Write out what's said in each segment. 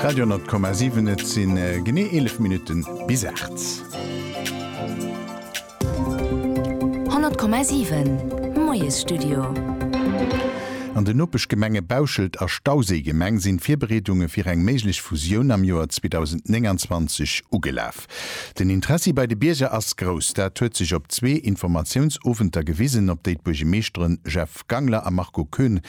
Radio 10,7 et sinn genee 11 Minutten bis 8. 100,7 Moiesstudio. An den Nopeschgemenge Bauschelt a Stauséigemeng sinn d'Virbereedunge fir eng méiglech Fusioun am Joer 2029 ugelaf. Den Interessi bei de Bierger ass grouss. Dat huet sech op zwee Informatiounsowenter gewisen, op déi d'Buergemeeschtere Jeff. Christophe Gangler a Marco Koen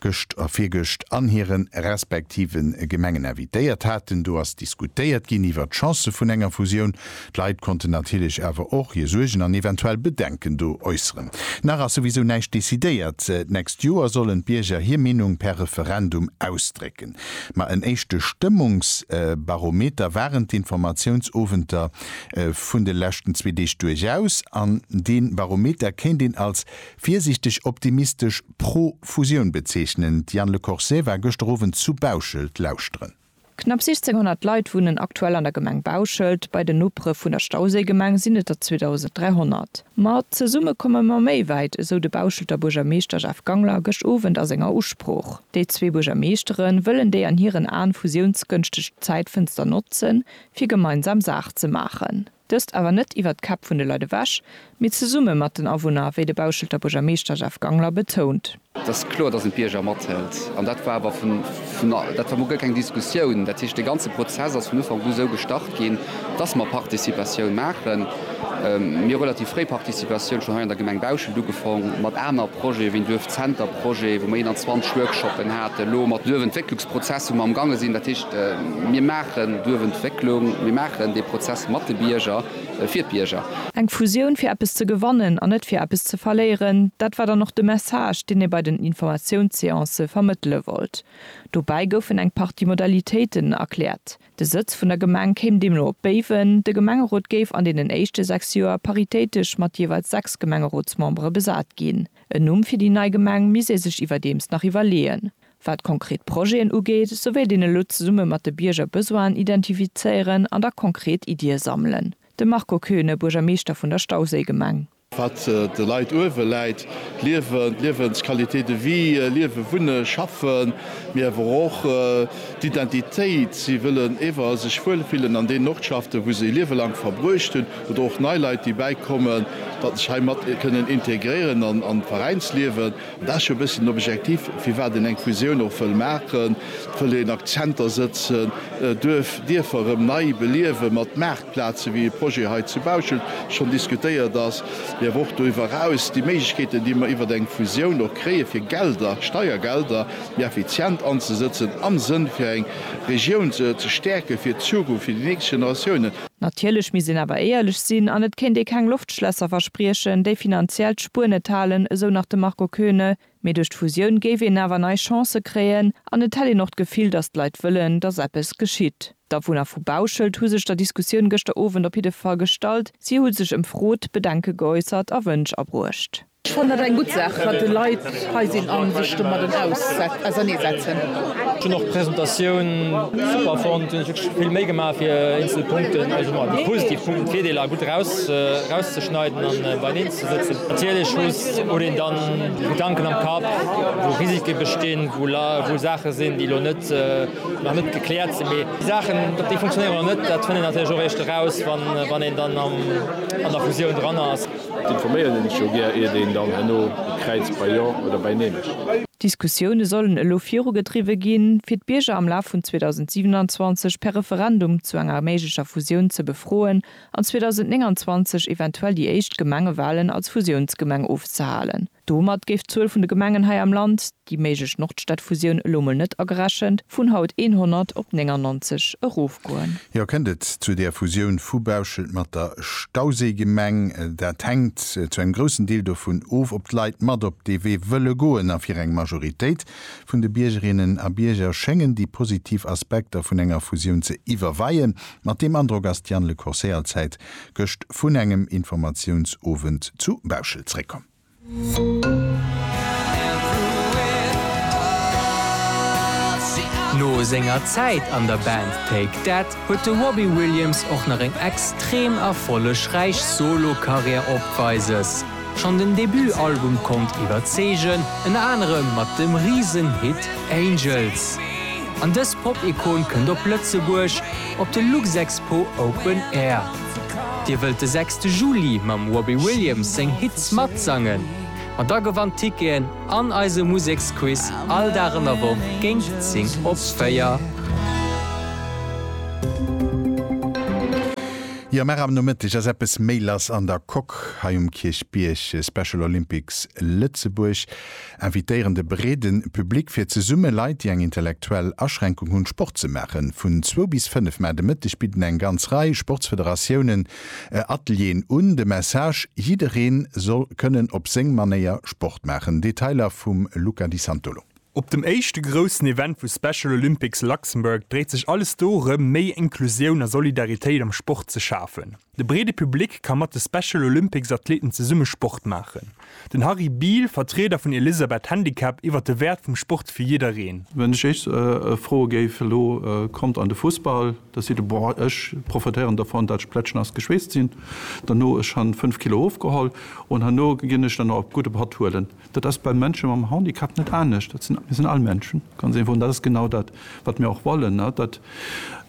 gëscht a virgëscht an hire respektive Gemengen invitéiert haten. Do ass diskutéiert ginn iwwert d'Chancë vun enger Fusioun. D'Leit konnten natierlech awer och hir Suergen an eventuell Bedenken do äusseren. Nach ass souwisou näischt decidéiert. D'nächst Joer sollen d'Bierger hir Meenung per Referendum ausdrécken. Ma en éischte Stëmmungsbarometer waren d'Informatiounsowenter vun de leschten zwee Deeg duerchaus. An dee Barometer kéint een als Virsiichteg optimistesch pro Fusioun bezeechnen. D'Diane Le Corset war gëschter Owend zu Bauschelt lauschteren. Knapp 1.600 Leit wunnen aktuell an der Gemeng Bauschelt. Bei den Nopere vun der Stauséigemeng sinn et der 2.300. Ma zesumme komme mer méi wäit, esou de Bauschelter Buergermeeschter Jeff Gangler gëscht Owend a senger Usprooch. Déi zwee Buergermeeschtere wëllen déi an hiren Aen fusiounsgënschteg Zäitfënster notzen, fir gemeinsam Saach ze maachen. Dëst awer net iwwert d'Käpp vun de Leit ewech, mee zesumme mat den Awunner, wéi de Bauschelter Buergermeeschter Jeff Gangler betount. Et ass kloer, datt een d'Bierger mathëlt. An dat war awer vun, dat war mol guer keng Diskussioun. Dat heescht, dee ganze Prozess ass vun Ufank u esou gestart ginn, datt mer Participatioun maachen. Mir hu relativ fréi Participatioun schonn hei an der Gemeng Bauschelt ugefaang, mat aner Projete wéi en Duerfzenterprojet, wou mer 21 Workshoppen haten, elo mat Duerfentwécklungsprojet, Prozess wou mer am gaange sinn. Dat heescht, mir maachen d'Duerfentwécklung, mir maachen dee Prozess mat de Bierger, fir d'Bierger. Eng Fusioun fir eppes ze gewannen an net fir eppes ze verléieren, dat war dann och de Message, deen ee bei den Informatiounsseancë vermëttele wollt. Dobäi goufen eng Partie Modalitéiten erkläert. De Sëtz vun der Gemeng kéim deemno op Béiwen. De Gemengerot géif an deenen éischte sechs Joer paritéitesch mat jeeweils sechs Gemengerotsmembere besat ginn. En Numm fir déi nei Gemeng misst ee sech iwwerdeems nach iwwerleeën. Wat konkret Projeten ugeet, sou wéilt een elo zesumme mat de Bierger Besoinen identifizéieren an da konkret Iddie sammelen. De Marco Koeune, Buergermeeschter vun der Stauséigemeng. Wat de Leit uewe läit, d'Liewen, d'Liewensqualité de vie, liewen, wunnen, schaffen, mee awer och d'Identitéit. Si wëllen ewer sech wuel fillen an deenen Ortschaften, wou se e Liewe laang verbruecht hunn, oder och nei Leit, déi bäikommen, datt sech hei mat kënnen integréieren an d'Veräinsliewen. Dat ass jo e bësschen objektiv, firwat een eng Fusioun och wëll maachen. Et wëll een Akzenter sëtzen, Duerf, Dierfer erëm nei beliewen, mat Maartplazen, wéi e Projet hei zu Bauschelt schonn diskutéiert ass, mee awer och doriwwer eraus déi Méiglechkeeten, déi mer iwwert eng Fusioun och kréien, fir Gelder, Steiergelder méi effizient anzesëtzen, am Sënn fir eng Regioun ze stäerken, fir d'Zukunft, fir déi nächst Generatiounen. Natierlech misst een awer éierlech sinn an et kéint ee keng Loftschlässer verspriechen, déi finanziell d'Spuer net halen, esou nach de Marco Koeune. Mee duerch d'Fusioun géif een awer nei Chancë kréien an et hätt een och d'Gefill, datt d'Leit wëllen, datt eppes geschitt. D'Awunner vu Bauschelt hu sech der Diskussioun gëschter Owend op jidde Fall gestallt. Si hu sech ëmfrot, Bedenke geäussert a Wënsch abruecht. Ech fannen dat eng gutt Saach, wat de Leit hei sinn a sech domadden auserneesetzen. Ech hunn och d'Presentatioun super fonnt. Hunn ech wierklech vill Méi gemaach fir eenzel Punkten, also mol déi positiv Punkten, d'Virdeeler gutt erauszeschneiden an beieneen ze sëtzen. Natierlech huet een dann Gedanken am Kapp, wou Risike bestinn, wou Saache sinn, déi elo net nach net gekläert sinn. Mee déi Saachen, ob déi funktionéieren oder net, dat fënnt een natierlech och eréischt eraus, wann een dann an der Fusioun dran ass. Informéieren een ech jo gär iert een dann herno kräizt bei Jo oder bei Neen. D'Diskussioune sollen elo virugedriwwe ginn, fir d'Bierger am Laf vun 2027 per Referendum zu enger méiglecher Fusioun ze befroen an 2029 eventuell déi éischt Gemengewalen als Fusiounsgemeng ofzehalen. Domat géif d'Zuel vun de Gemengen hei am Land, déi méiglech Nordstadfusioun elo mol net agerechent, vun haut 100 op 99 erofgoen. Jo, kënnt et zu där Fusioun vu Bauschelt mat der Stauséigemeng? Dat hänkt zu engem groussen Deel dovun of, ob d'Leit mat op dee Wee wëlle goen. A fir eng Majoritéit vun de Biergerinnen a Bierger schéngen déi positiv Aspekter vun enger Fusioun ze iwwerweien. Mat deem Androck ass d'Diane Le Corset Allzäit gëscht vun engem Informatiounsowend zu Bauschelt zréckkomm. No senger Zäit an der Band Take That huet de Robbie Williams och nach eng extrem erfollegräich Solo-Karriär opweises. Schonn den Debut-Album konnt iwwerzeegen, ënner anerem mat dem Risen-Hit Angels. An dës Pop-Ikon kënnt op Lëtzebuerg, Op de Luxexpo Open Air. Dir wëllt de sechste Juli mam Robbie Williams seng Hits matsangen? Ma da gewannt Ticketen an eise Museksquiz all Dag an der Woch géint 10 op 4. Jo mach am Nomëtteg ass eppes méi lass an der Coque hei um Kierchbierg, Special Olympics Lëtzebuerg. Invitéieren de breede Public fir zesumme Leit, déi eng intellektuell Aschränkung hunn, Sport ze maachen. Vun zwou bis fënnef Mä de Mëtteg bidden eng ganz Rei Sportsfederatiounen Atelieren un. De Message, Jiddereen soll kënnen op seng Manéier Sport maachen. Detailer vum Luca Di Santolo. Op dem éischte groussen Event vu Special Olympics Luxembourg dréit sech alles dorëm, méi Inklusioun a Solidaritéit am Sport ze schafen. De breede Public ka mat de Special Olympics Athleten zesumme Sport maachen. Den Harry Biel, Vertrieder vun Elisabeth Handicap iwwer de Wäert vum Sport fir jiddereen. Wann ech iech froe géif, elo kommt an de Fussball, da seet der, boah ech profitéieren dovun dat ech plätschnass geschweesst sinn, derno ech han 5 Kilo ofgeholl, un herno ginn ech dann nach op gudde Patt huelen. Dat ass bei Mënsche mam Handicap net anescht. Dat sinn, mir sinn all Menschen, ganz einfach. An dat ass genau dat, wat mir och wollen, dat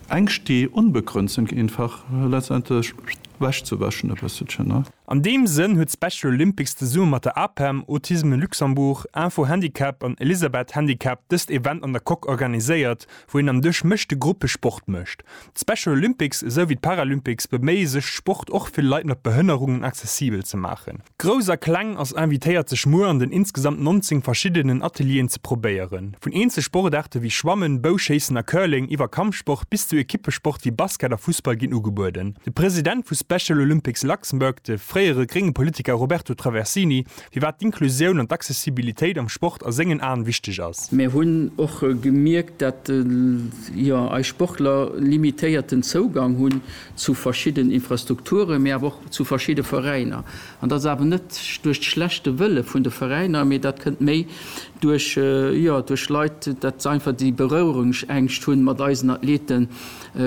Ängscht, déi onbegrënnt sinn, einfach letztendlech ewechzewäschen e bësselchen. An deem Sënn huet d'Special Olympics zesumme mat der APEM, Autisme Luxembourg, Info Handicap an Elisabeth Handicap dëst Event an der Coque organiséiert, wou een am Duerch mëschte Gruppe Sport mécht. D'Special Olympics esou wéi d'Paralympics beméie sech Sport och fir Leit mat Behënnerungen accessibel ze maachen. Grouss a Kleng ass invitéiert sech muer an den insgesamt 19 verschiddenen Atelieren ze probéieren. Vun eenzel Sportaarte wéi Schwammen, Bouschéissen a Curling iwwer Kampfsport bis zu Ekippesport wéi Basket a Fussball ginn ugebueden. De President vu Special Olympics Luxembourg, de fréiere grénge Politiker Roberto Traversini, firwat d'Inklusioun an d'Accessibilitéit am Sport a sengen Aen wichteg ass. Mär hunn och gemierkt, dat jo eis Sportler limitéierten Zougang hunn zu verschidden Infrastrukturen, mee awer och zu verschidde Veräiner. An dat ass awer net duerch d'schlechte Wëlle vun de Veräiner, mee dat kënnt méi duerch, jo, duerch Leit, dat se einfach déi Bereuerungsängscht hunn, mat eisen Athlete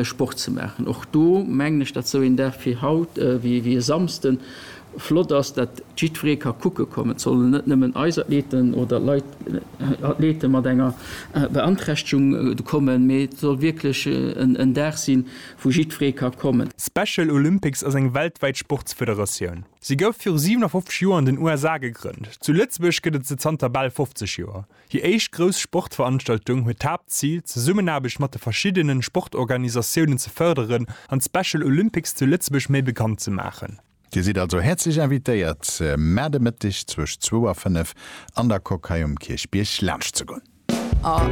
Sport ze maachen. Och do mengen ech, dat sou een Dag wéi haut, wéi e Samsden, Flott ass, datt jiddweree ka kucke kommen. Et sollen net nëmmen eis Athleten oder Leit, Athlete mat enger Beanträchtegung kommen, mee et soll wierklech en Dag sinn, wou jiddweree ka kommen. Special Olympics ass eng weltwäit Sportsfederatioun. Si gouf viru 57 Joer an den USA gegrënnt. Zu Lëtzebuerg gëtt et se zanter bal 50 Joer. Hir éischt grouss Sportveranstaltung huet d'Haaptzil, d'Zesummenaarbecht mat de verschiddene Sportorganisatiounen ze fërderen an d'Special Olympics zu Lëtzebuerg méi bekannt ze maachen. Dir sidd also häerzlech invitéiert, Mäerde Mëtteg zwësch zwou a fënnef an der Coque hei um Kierchbierg laanscht ze goen.